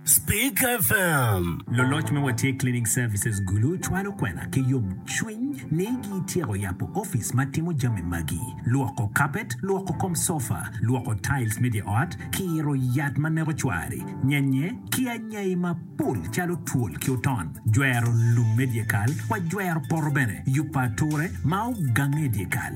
Speak FM. Loloc me Watye Cleaning Services Gulu cwalo kwena ki yomcwiny ni gityeko yabo opic ma timo jami magi, lwoko kapet, lwoko kom sofa, lwoko tiles me dye ot, kiro yat ma neko cwari, nyenye, ki anyai mapol calo twol ki oton, jwero lum me dyekal wa jwero poto bene, yubo ature ma ogange i dyekal.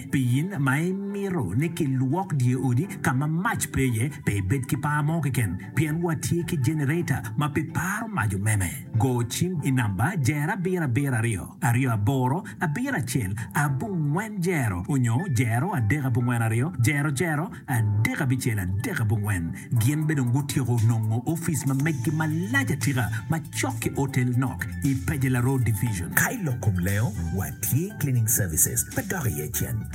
Pi in ma imito ni kilwok dye odi ka ma mac pe iye, pe ibed ki par mo keken, pien watye ki jenereta ma pe paro mac omeme. Go cim i namba jero abiro abiro aryo aryo aboro abiro acel abongwen jero onyo jero adek abongwen aryo jero jero. Adek abicel, adek abongwen, gin bene dong gutyeko nongo ofice ma meggi malac atika macok ki otel nok i Pajela Road Division. Ka i lok kom lengo, watye cleaning services ma dok iye cen.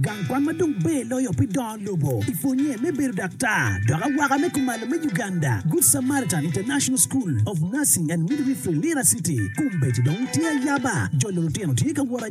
Gang kwan ma dong ber loyo pi dongo lobo i pwonye me bedo daktar dok awaka me kumalo me Uganda, Good Samaritan International School of Nursing and Midwifery, Lira City, kombedo dong tye ayaba. Jolo lutino tye ka wot.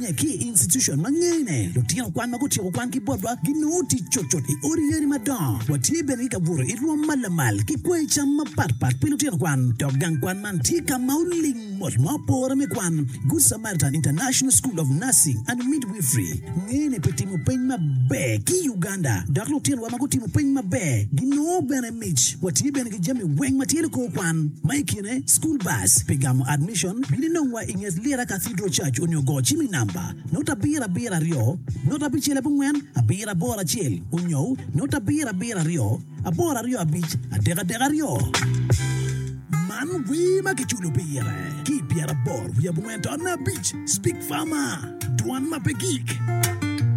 Ki i institucon ma ngene, lutino kwan ma gutyeko kwangi botwa ginongo tic cutcut i odi yeni madongo. Watye bene ki ka buto i rwom ma lamal ki kwayi cam mapatpat pi lutino kwan. Dok gang kwan man tye ka ma oling mot ma opore me kwan. Good Samaritan International School of Nursing and Midwifery ngene pi timo peny maber ki i Uganda, dok lutinowa ma gutimo peny maber ginongo bene Mic, Watye bene ki jami weng ma tye likor kwan, ma i kine School Bus pi gamo admission, bino inongwa i nget Lira Cathedral Church onyo go cim i namba note abiro abiro aryo note abicel abongwen abiro aboro acel onyo note abiro abiro aryo aboro aryo abic adek adek aryo. Man wer ma kiculo pire ki i pyeraboro wiye abongwen taonne abic, Speak Farmer, Dwan ma pe gik.